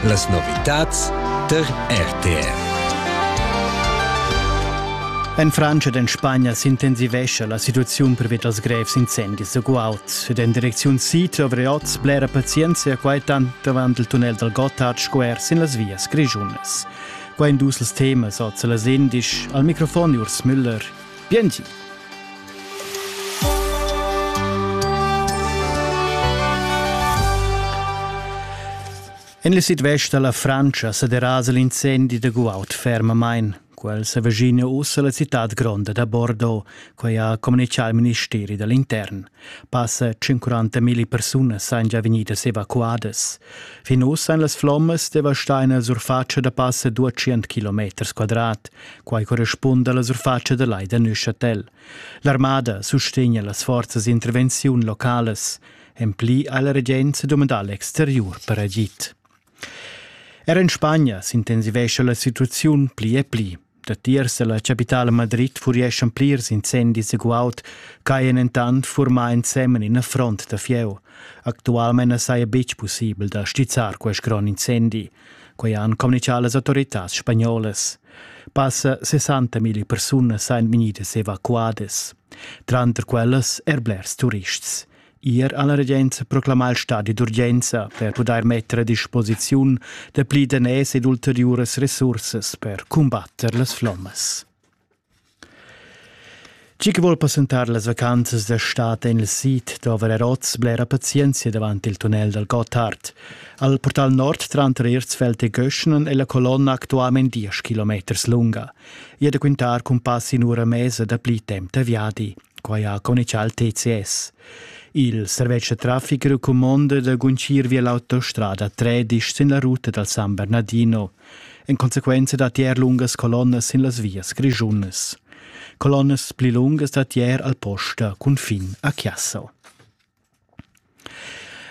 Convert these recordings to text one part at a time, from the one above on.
Las novitads tar RTR. En Francia ed en Spagna s'intensivescha la situaziun pervia dals grevs incendis da guaud. Ed en direcziun sid dovri oz blera pazienza e quai tant avant il tunnel dal Gotthard sco er sin las vias grischunas. Quai en dus temas oz a las indisch. Al microfon Urs Müller. Bienchi. En le sidvest da la Frantscha sa derasa l'incendi da guaud fermamain. Quel sa vegina ussa la citad gronda da Bordeaux, quai ha communicà il ministeri da l'intern. Passa 140 mila persunas ein già vegnidas evacuadas. Fin uss ein las flommas devastai nella surface da passa 200 km quadrat, quai corrispunda alla surface da Lai da Neuchâtel. L'armada sustegna las forzas intervenziun localas. En pli ha la regenza domandà l'exteriur per agid. Er in Spagna s'intensivescha la situaziun pli e pli. Datiers dalla capitala Madrid furieschan plirs incendis e guaud ch'hajan entant furmà ensemen ina front da fieu. Actualmain na saja betg pussibel da stizzar quest grond incendi. Quai han communitgà las autoritads spagnolas. Passa 60.000 persunas sajan vegnidas evacuadas. Tranter quellas er blers turists. Ir alla regenza proclamà il stadi d'urgenza per pudair metter a disposiziun dapli daners ed ulteriuras resursas per cumbatter las flommas. Chi che vuol passentar las vacanzas da stat en il sid da Valeroz blera pazienza davant il tunnel dal Gotthard. Al portal nord tranter Erzfeld e Göschnen è la colonna actualment 10 km lunga. e da quintar cun pass in ura mesa da pli temp da viadi. Quai ha conichal TCS. Il servetsch da traffic recumonda da guncir via l'autostrada 13 sin la ruta dal San Bernardino, en consequenza da tier lungas colonnas sin las vias grischunas. Colonnas pli lungas da tier al posta cun fin a Chiasso.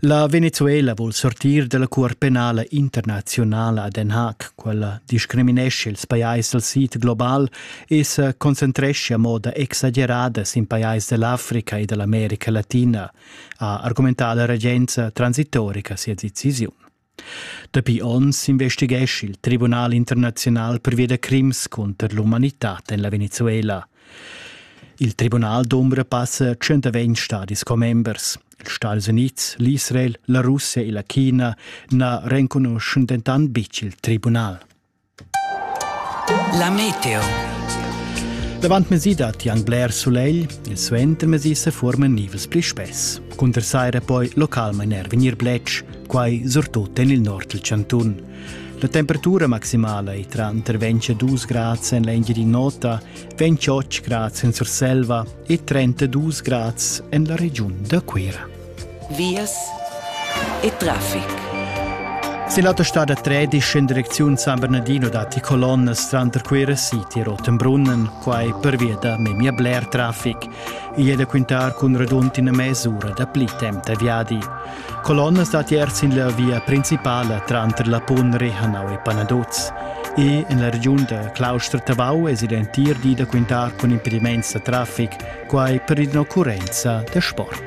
La Venezuela vul sortir dalla cuort penala internazionala a Den Haag. Quella discriminesce ils pajais dal sid global e se concentresce a moda exagerada sin pajais dell'Africa e dell'America Latina, ha argumentà la regenza transitorica sia decisiun. Dapi onns investigesch il Tribunal internaziunal pervia da crims cunter l'umanitad en la Venezuela. Il tribunal d'ombra passa 120 stadis commembers. Els Stati Unids, l'Israel, la Russia e la China na renconuschan dentant betg il tribunal. La meteo. Davant mesi dat anc bler sulegl, il suentermesi se forman nivels pli spess. Cunter saira poi localmain er vegnir bletsch, quai surtut en il nord del cantun. La temperatura maximala è tra intervention 2 grads en l'Engiadin'Ota, 28 grads en Surselva e 32 grads en la regiun da Cuira. vias e traffic. Sin l'autostad a Tredisch in direcziun San Bernardino datti colonnas tranter Cuira City e Rotenbrunnen, quai pervia da memia bler traffic. Igl è da quintar cun radund ina mes'ura dapli temp da viadi. Colonnas datti er sin la via principala tranter la Pun Rehanau e Panaduz. E en la regiun da Claustra-Tavau es il entir di da quintar cun impediments da traffic, quai per in'occurrenza da sport.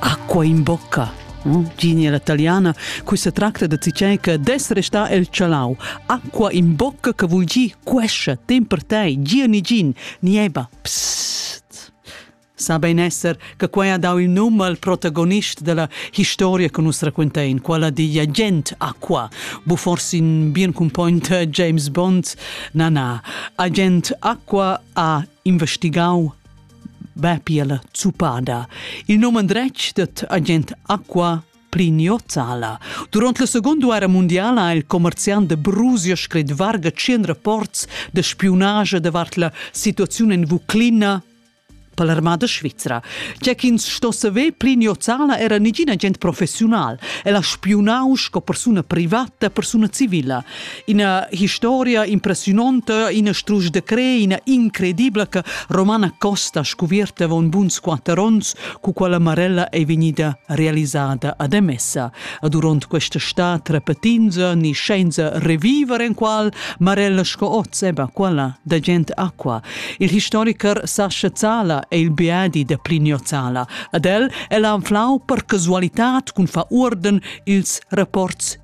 Acqua in bocca. Uh, genia la taliana, cui se tracta da cicè che des resta el chalau. Acqua in bocca che vul gi quescia, tem per te, gia ni gin, nieba. Psst. Sa ben esser che quai ha dau il num al protagonist della historia che nus raccontein, quella di agent Acqua, bu forsi in bien cumpognt James Bond, na na, agent Acqua ha investigau va pia la zuppada. Il num andretg dat agent Aqua Plignozzala. Durant la Seconda Guerra Mondiala ha il commerziant de Brusio scrit varga tschien rapports de spiunage davart la situaziun en Vuclina per l'armada svizra. C'è ch'ins sto saver, Plignozzala era negin agent professional. El ha spiunau sco persuna privata, persuna civila. Ina historia impressiunonta, ina strusch de cre, ina incredibla che Romana Costa scuvierta avon buns quatter onns, cu quella Marella ei vegnida realisada ad Emessa. A duront questa stat repetinza ni scienza reviver en qual Marella sco oz eba quella da gent aqua. Il historiker Sascha Zala è il beadi de Plinio Zala. Ad el ella anflau per casualità cun fa urden ils rapports